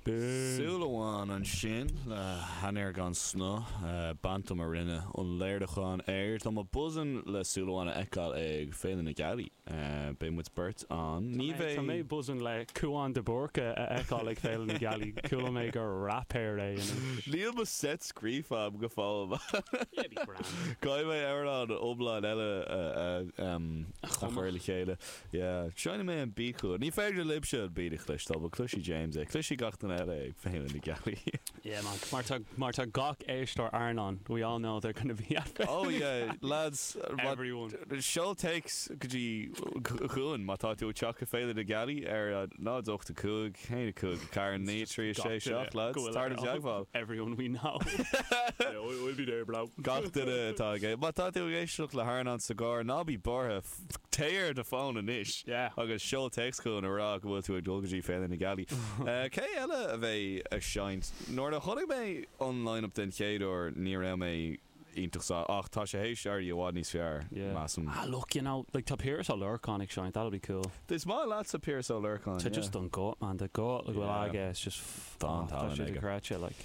Súil Amháin ansin le hainnir gan snáth. Bantum a rinne an léiriúchán air. Tá mé buzzin' le Súil Amháin a fheiceáil ag Féile na Gealaí. Beidh muid beirt ann. Ní bheidh. Tá mé buzzin' le Cúán de Búrca a fheiceáil ag Féile na Gealaí. Chuala mé gur raipéar é anois. Níl mo seit scríofa agam go fóill. Yeah, be grand. Caithfidh mé amhrán iomlán eile a chur le chéile. Yeah, seinnfidh mé an beat chugat. Ní féidir libhse an beat a chloisteáil, but cloisfidh James é. Cloisfidh gach duine eile é ag Féile na Gealaí. Yeah man, mar tá, mar tá gach éisteoir Airneáin, we all know they're gonna be at the. Oh yeah, lads, everyone. Seol téacs go dtí chugainn má tá tú ag teacht ag Féile na Gealaí ar 0, 8, 5, 1, 5, 4, 9, 3, 6, 7, lads, tar i dteagmháil. Everyone we know. Yeah, we'll be there, bro. Gach duine atá ag, má tá tú ag éisteacht le hAirneán sa gcarr, ná bí buartha, Téigh ar do fón anois agus seol téacs chugainn ag rá go bhfuil tú ag dul go dtí Féile na Gealaí. Cé eile a bheidh ag seinnt? Nuair a chonaic mé an line-up den chéad uair ní raibh mé iontach sásta, ach tá sé th'éis éirí i bhfad níos fearr, measaim. Ah look, you know, like tá Piaras Ó Lorcáin ag seinnt, that'll be cool. Is maith leatsa Piaras Ó Lorcáin, Tá yeah. just an guth, man, tá guth le go bhfuil Yeah. aige, it's just, tá Tá an sé talent aige. dochreidte, like.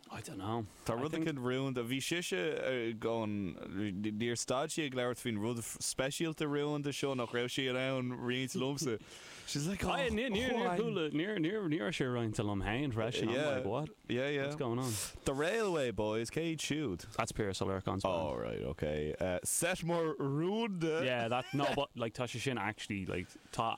I don't know. Tá I rud think. éicint rúnda. Bhí sise ag an. Níor stad sí ag labhairt faoin rud speisialta rúnda seo nach raibh sí in ann roinnt liomsa. She's like, Oh, I, níor, níor, níor Juan. chuala, níor, níor, ní raibh sé roinnte liom féin freisin. I'm Yeah. like, what? Yeah, yeah. What's going on? The Railway Boys, cé iad siúd? That's Piaras Ó Lorcáin's band. Oh, right, okay. Eh, set mór rúnda. Yeah, that, no, but, like, tá sé sin actually, like, tá,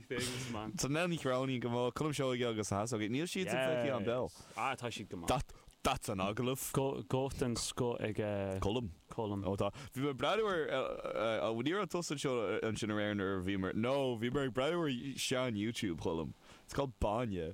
Nell Ní Chróinín, Go maith. Colm Seoighe agus na hEasógaí. Níl siad sa chluichí an beo. Yes. Ah tá siad go maith. That's an agallamh. Guth den scoth ag Colm. Colm. Ó tá. Bhí mé ag breathnú ar, bhuel ní raibh tusa anseo ansin aréir nuair a bhíomar, no bhíomar ag breathnú ar sean YouTube Cholm. It's called Báine.